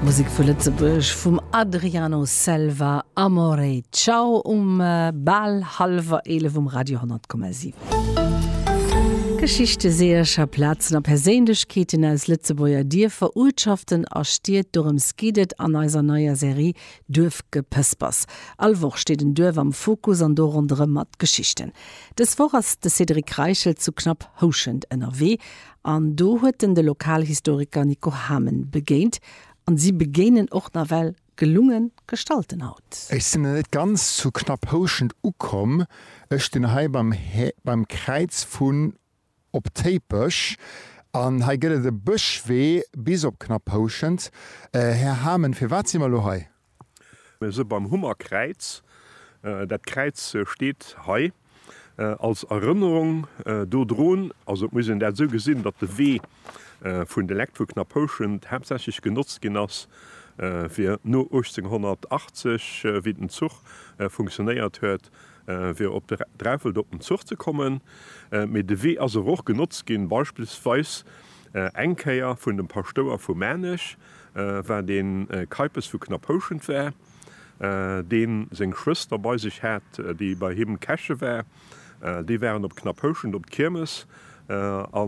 Musek vu Lëtzebuerg vum Adriano Selva, Amore Ciao um bal hallwer 11 um Radio 10,7. Geschichte, Seeërcher, Plazen a Perséinlechkeeten aus Lëtzebuerger Dierfer, Uertschaften a Stied, dorëms geet et an eiser neier Serie Duerfgepëspers. All Woch steet en Duerf am Fokus an do ronderëm mat Geschichten. Dës Woch ass de Cédric Reichel zu Knapphouschent ënnerwee. An do huet en de Lokalhistoriker Nico Hamen begéint an si begéinen och nawell gelungen Gestalten haut. Ech sinn net ganz zu Knapphouschent ukomm, ech stinn hei beim beim Kräiz vun Op Téipech an hei gëtt et e Bëschwee bis op Knapphouschent. Här Hamen, firwat si mer elo hei? Se beim Hummerkräiz, dat Kräiz steet hei als Erënnerung dodrun, also et muss een dat esou gesinn, datt de Wee vun de Lekt vu Knapphouschent haaptsächlech genotzt ginn ass fir no 1880, wéi den Zuch funktionéiert huet, fir op Dreffelt op den Zuch ze kommen, mee de Wee ass awer och genotzt ginn beispillsweis eng Kéier vun dem Paschtouer vu Maarnech. wat ee Keipes vu Knapphouschent war, dee seng Schwëster bei sech hat, déi bei him Käche war. Déi waren op Knapphouschent op d'Kiermes a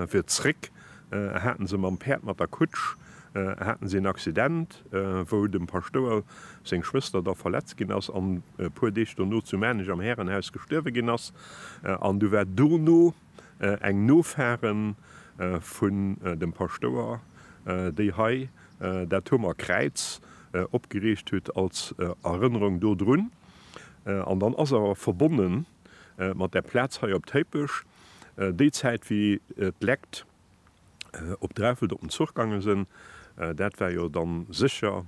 fir zréck haten se mam Päerd, mat der Kutsch, haten se en Accident, wou dem Paschtouer seng Schwëster da verletzt ginn ass an e puer Deeg dono zu Maarnech am Härenhaus gestuerwe ginn ass. An du war dono. eng Nofaren vun dem Paschtouer, déi hei dat Huemer Kräiz opgeriicht hutt als Erënnerung do drun. An dann ass awer verbonne mat där Plaz hei op Téipech, déi Zäit wéi d'Lekt op Dreffelt op den Zuch gangen sen. Daat war jo dann secher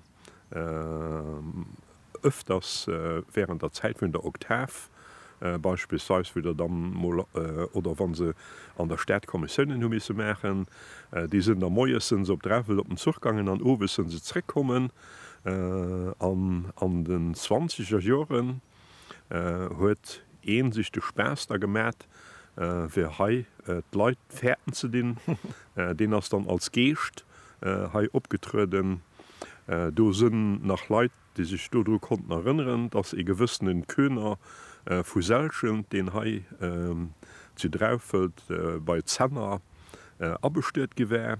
öfters während der Zeit vun der Oktav, beispillsweis wou der dann mol, oder wann se an der Stadt Kommissiounen hu missen machen, déi sen da moies sen se op Dreffelt op den Zuch gangen an owes sen se zreck kommen. An den zwanziger Joeren huet een sech de Spaass da gemat fir hei d'Leit fäerten ze dinn. Deen ass dann als Geescht hei opgetrueden. Do sinn nach Leit déi sech dodru konnten erënneren, datt ee gewëssene Köhner vu Selschent, deen hei zu Draufelt bei Zenner abestuet gi war,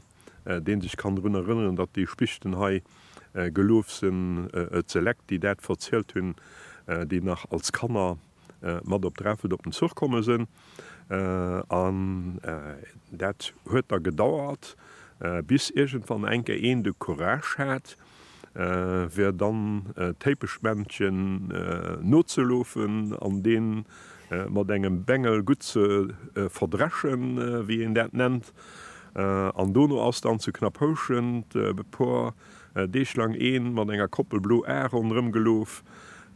deen sech kann drun erënneren, datt déi Spichten hei geluef sen, et se Leck, déi dat verzielt hun, déi nach als Kanner mat op Dreffelt op den Zuch komme sen. An dat huet da gedauert, bis iergendwann enke een de Courage hat, wär dann d'Téipeschmännchen nozelofen an dee mat engem Bengel gutt ze verdreschen, wéi een dat nennt. An dono ass dann zu Knapphouschent e puer Deeg laang ee mat enger Koppel blo Ae ronderëm gelof,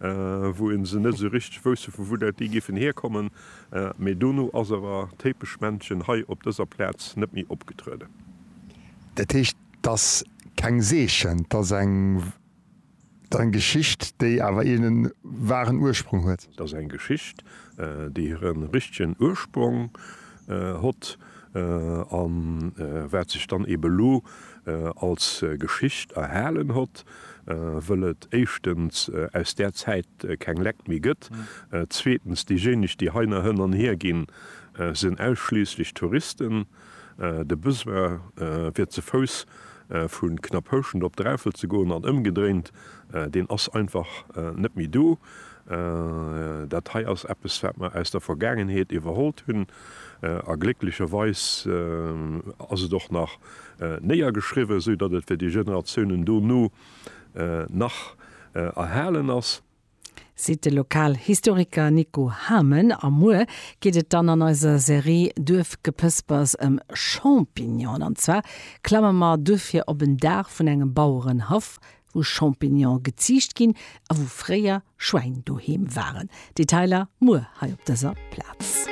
wou ee se net esou richteg wousst, vu wou dat déi géifen hierkommen. Mee dono ass awer d'Téipeschmännchen hei op dëser Plaz net méi opgetrueden. Dat heescht, 't ass keng Seechen, 't ass eng Geschicht, déi awer een waren Ursprung huet. 't ass eng Geschicht, déi hire richtegen Ursprong hott a wat sech dann eben elo als Geschicht erhalen hott, wëll et éischtens aus där Zäit keng Leck méi gëtt, zweetens, déijéineg, déi heiner hënn an hier ginn, sinn ausschliisslech Touristen. De Besoin fir ze Fouss vu Knapphouschent op Dräiffel ze goen an ëmgedréint, deen ass einfach net méi do. Dat hei ass eppes wat mer aus der Vergaangenheet iwwerhollt hunn a glécklecherweis ass et och nach néiergeschriwwen, esou datt et fir déi Generatiounen dono nach erhalen ass. seet de Lokalhistoriker Nico Hamen. A muer geet et dann an eiser Serie Duerfgepëspers ëm Champignonen. An zwar klamme mer duerfir op en Daach vun engem Bauerenhaff, wou Champignone geziicht ginn a wou fréier Schwäin doheem waren. Detailer muer hei op dëser Plaz.